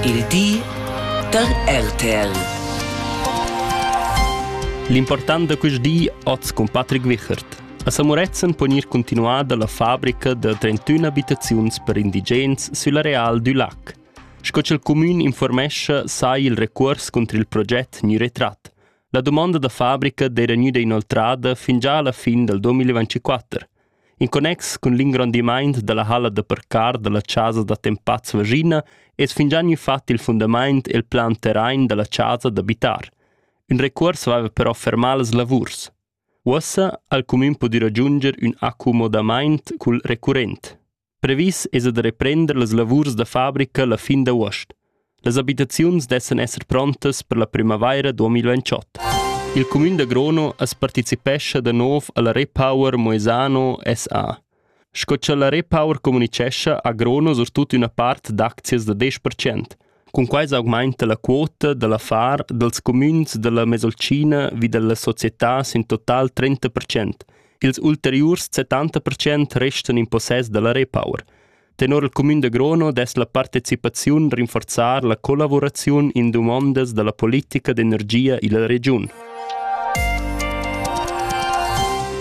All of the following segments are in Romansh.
Il di da RTL. L'important da quest di oz cun Patrick Wichert. A Samuretzen pon ir continuar dalla fabrica da 31 abitaziuns per indigens sül areal du lac. Sco ch'il comün informescha sai il recuors contro il proget gnü retrat. La domanda da fabrica d'era gnüda inoltrada fin già alla fin dal 2024. In connex cun l'ingrondimaint da la halla da parcar da la chasa d'attempats Vaschina es fingià gnü fat il fundamaint e'l plan terrain da la chasa d'abitar. Ün recuors vaiva però fermà las lavurs. Uossa ha'l cumün pudü ragiunder ün accumodamaint cul recurrent. Previs esa da reprender las lavurs da fabrica la fin d'avuost. Las abitaziuns dessan esser prontas per la primavaira 2028. Il cumün da Grono as partecipescha da nov alla Repower Moesano SA. Sco cha la Repower comunichescha ha Grono surtut üna part d'aczias da 10%. Cunquai s'augmainta la quota da l'affar dals cumüns da la Mesolcina vi da la società sün total trenta percent. Ils ulteriurs settanta percent restan in possess da la Repower. Tenor il cumün da Grono dess la partecipaziun rinforzar la collavuraziun in dumondas da la politica d'energia illa regiun.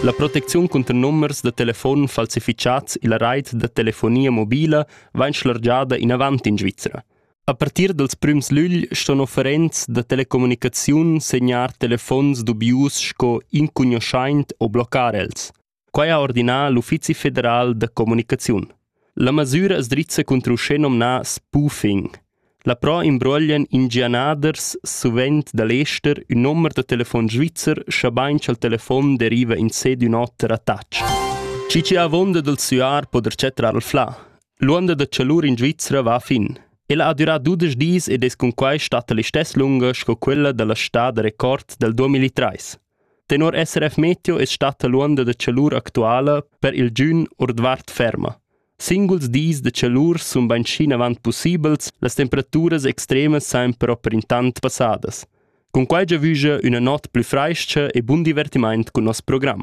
La protecziun cunter numbers da telefon falsifichats illa rait da telefonia mobila vain schlargiada inavant in Svizra. A partir dals prüms lügl ston offerents da telecommunicaziun segnar telefons dubius sco incugnoschaint o blocar els. Quai ha ordinà l'Uffizi federal da comunicaziun. La masüra as drizza contro uschè nomnà spoofing – La Pro imbruoglian ingianaders suvent da l'ester ün nomer da telefon svizzer, schabain cha'l telefon deriva insè d'ün oter attach. Schi chi avonda dal süar po der chatrar il flà. L'uonda da chalur in Svizra va a fin. Ella ha durà dudesch dis ed es cunquai stata l'istess lunga sco quella da la stà da record dal 2003. Tenor SRF Meteo es statta l'uonda da chalur actuala per il giün ordvart ferma. Singuls dis da tschalur sun bainschi avant pussibels, las temperaturas extremas san però per intant passadas. Cun quai giavüscha üna not plü frais-cha e bun divertimaint cun nos program.